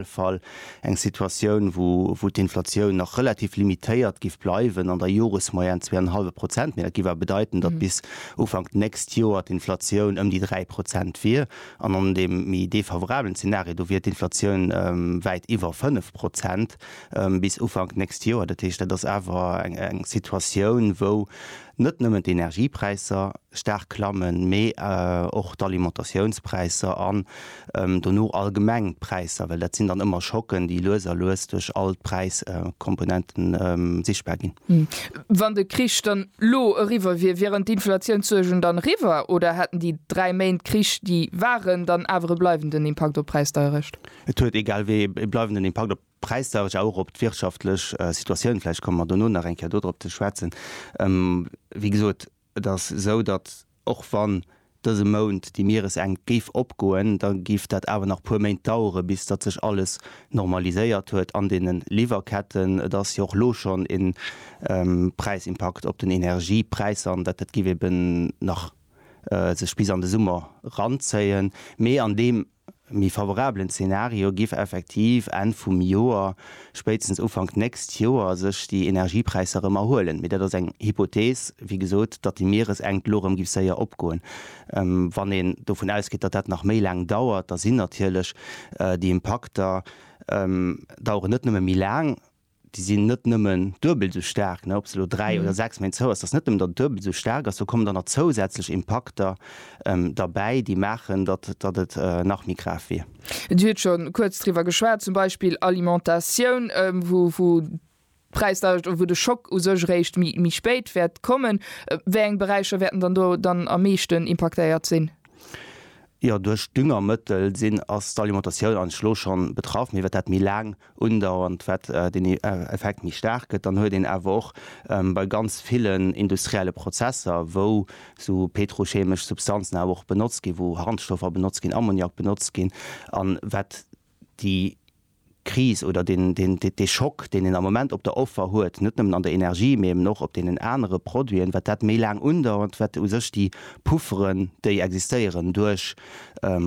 alle Fall eng Situatioun, wou d'Inflatioun nach relativ limitéiert giff bleiwen, an der Joresmoyenne zwee an en hallwe Prozent, mee dat giff awer bedeiten, datt bis Ufank d'nächst Joer d'Inflatioun ëm déi dräi Prozent wier, an an deem méi defavorablen Zeenario, do wier d'Inflatioun wäit iwwer fënnef Prozent bis Ufank d'nächst Joer. Dat heescht, dat ass awer eng Situatioun, wou Net nëmmen d'Energiepräisser staark klammen, mee och d'Alimentatiounspräisser an dono allgemeng d'Präisser, well dat sinn dann ëmmer Schocken, déi lues a lues duerch all d'Präiskomponente sichtbar ginn. Wann de Krich dann elo eriwwer wier, wieren d'Inflatiounssuergen dann eriwwer oder hätten déi dräi Méint Krich, déi waren, dann awer e bleiwenden Impakt op d'Präisdeierecht? Et huet egal wéi e bleiwenden Impakt op Präisdauerg a och op d'wirtschaftlech Situatioun, vläicht komme mer dono nach eng Kéier dodrop ze schwätzen. Wéi gesot, et ass esou, datt och wann dëse Mount déi Mieresenkt géif opgoen, da géif dat awer nach e puer Méint dauere bis datt sech alles normaliséiert huet an deene Liwwerketten. Et ass jo och elo schonn e Präisimpakt op den Energiepräisser an dat dat géif eben nach sech bis an de Summer ranzéien. Mee an deem méi favorablen Zenario giff effektiv Enn vum Joer, spéitstens Ufank nächst Joer sech déi Energiepräisser erëm erhuelen. Mee dat ass eng Hypothees, wéi gesot, datt déi Mieresenkt elo erëm giff séier opgoen. Wann een dovun ausgeet, datt dat nach méi laang dauert, da sinn natierlech déi Impakter daueren net nëmme méi laang, déi sinn net nëmmen duebel esou staark, ob se elo dräi oder sechs Méint zou ass, dass se net nëmmen dann duebel esou staark ass, do kommen dann nach zousätzlech Impakter derbäi, déi maachen, datt et nach méi grav wier. Dir hutt scho kuerz driwwer geschwat, zum Beispill Alimentatioun, wou d'Präisdauecht oder wou de Schock u sech eréischt méi spéit wäert kommen. Wéi eng Beräicher wäerten dann do dann am meeschten impaktéiert sinn? Jo, duerch d'Düngermëttel sinn, ass d'Alimentatioun eigentlech elo schonn betraff, mee wat dat méi laang undauernd, wat den Effekt méi staark gëtt, dann huet een awer och bei ganz villen industrielle Prozesser, wou esou petrochemesch Substanzen awer och benotzt ginn, wou Harnstoffer benotzt ginn, Ammoniak benotzt ginn, an wat déi Kris oder dee Schock, deen een am Moment op der Offer huet, net nëmmen an der Energie, mee eben och op deenen anere Produiten, wat dat méi laang undauert, wat u sech déi Pufferen, déi existéieren duerch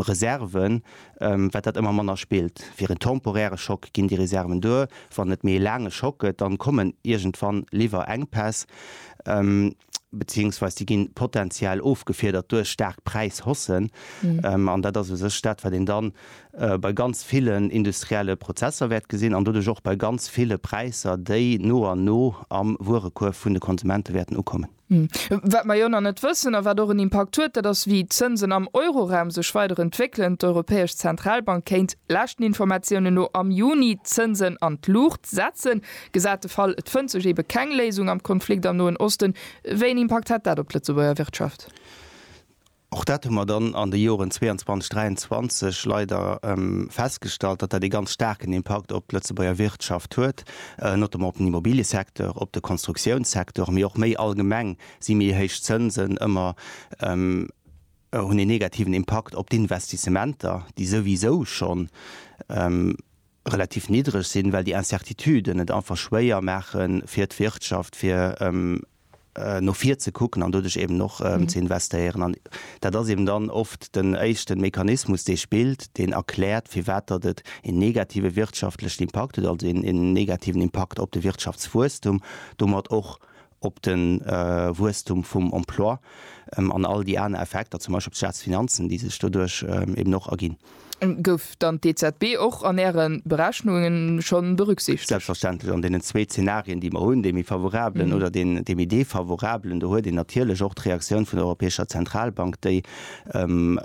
Reserven, wat dat ëmmer manner spillt. Fir en temporäre Schock ginn déi Reserven duer. Wann et méi e laange Schock gëtt, dann kommen iergendwann Liwwerenkpäss, beziéiungsweis déi ginn potentiell ofgefiedert duerch staark Präishaussen. An dat ass u sech dat, wat een dann bei ganz villen industrielle Prozesser wäert gesinn an doduerch och bei ganz ville Präisser, déi no an no am Wuerekuerf vun de Konsumente wäerten ukommen. Wat mer jo nach net wëssen a wat och en Impakt huet, dat ass, wéi d'Zënsen am Euroraum sech weider entwéckelen. D'Europäesch Zentralbank kéint, leschten Informatiounen no, am Juni d'Zënsen an d'Luucht setzen. Gesat de Fall, et fënnt sech eebe keng Léisung am Konflikt am Noen Osten, wéi en Impakt hätt dat op d'Lëtzebuerger Wirtschaft? Och dat hu mer dann an de Joren 22, 23 leider festgestallt, datt dat ee ganz staarken Impakt op d'Lëtzebuerger Wirtschaft huet, notamment op den Immobiliësecteur, op de Konstruktiounssektor, mee och méi allgemeng si méi héich Zënsen ëmmer, hunn een negativen Impakt op d'Investissementer, déi souwisou scho relativ niddreg sinn, well déi Incertituden et einfach schwéier maachen, fir d'Wirtschaft, fir no vir ze kucken an doduerch eben och ze investéieren. An dat ass eben dann oft den éischte Mechanismus, dee spillt, deen erkläert, firwat datt et een negative wirtschaftlechen Impakt huet, also een negativen Impakt op de Wirtschaftswuesstum, domat och op de Wuesstum vum Emploi an all déi aner Effekter, zum Beispill op d'Staatsfinanzen, déi sech doduerch eben och erginn. Gouf dann d'EZB och an Äre Berechnunge schonn berücksichtegt? Selbstverständlech. An deenen zwee Zenarien, déi mer hunn, dee méi favorabelen oder dee méi defavorabelen, do huet een natierlech och d'Reaktioun vun der Europäescher Zentralbank, déi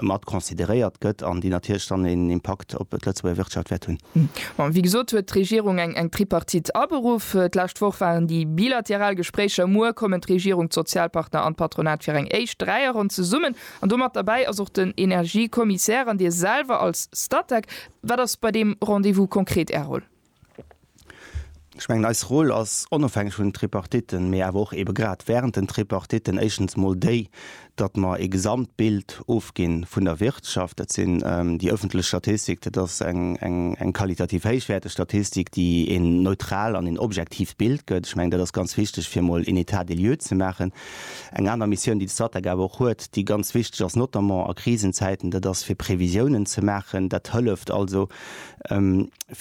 mat consideréiert gëtt an déi natierlech dann een Impakt op d'Lëtzebuerger Wirtschaft wäert hunn. Bon, wéi gesot huet d'Regierung eng Tripartite aberuff. D'lescht Woch waren déi bilateral Gespréicher. Muer kommen d'Regierung, d'Sozialpartner an d'Patronat fir eng éischt Dräierronn zesummen. An do mat derbäi ass och den Energiekommissär an Dir selwer als Statec. Wat ass bei deem Rendez-vous konkret Är Roll? Ech mengen, eis Roll ass onofhängeg vun den Tripartitten, mee awer och eebe grad während den Tripartitten, éischtens mol déi, datt mer ee Gesamtbild ofginn vun der Wirtschaft. Dat sinn déi öffentlech Statistik, dat ass eng qualitativ héichwäerteg Statistik, déi een neutral an een objektiivt Bild gëtt. Ech mengen, dat ass ganz wichteg, fir emol een État des lieux ze maachen. Eng aner Missioun, déi de Statec awer och huet, déi ganz wichteg ass, notamment a Krisenzäiten, dat ass, fir Previsiounen ze maachen. Dat hëlleft also,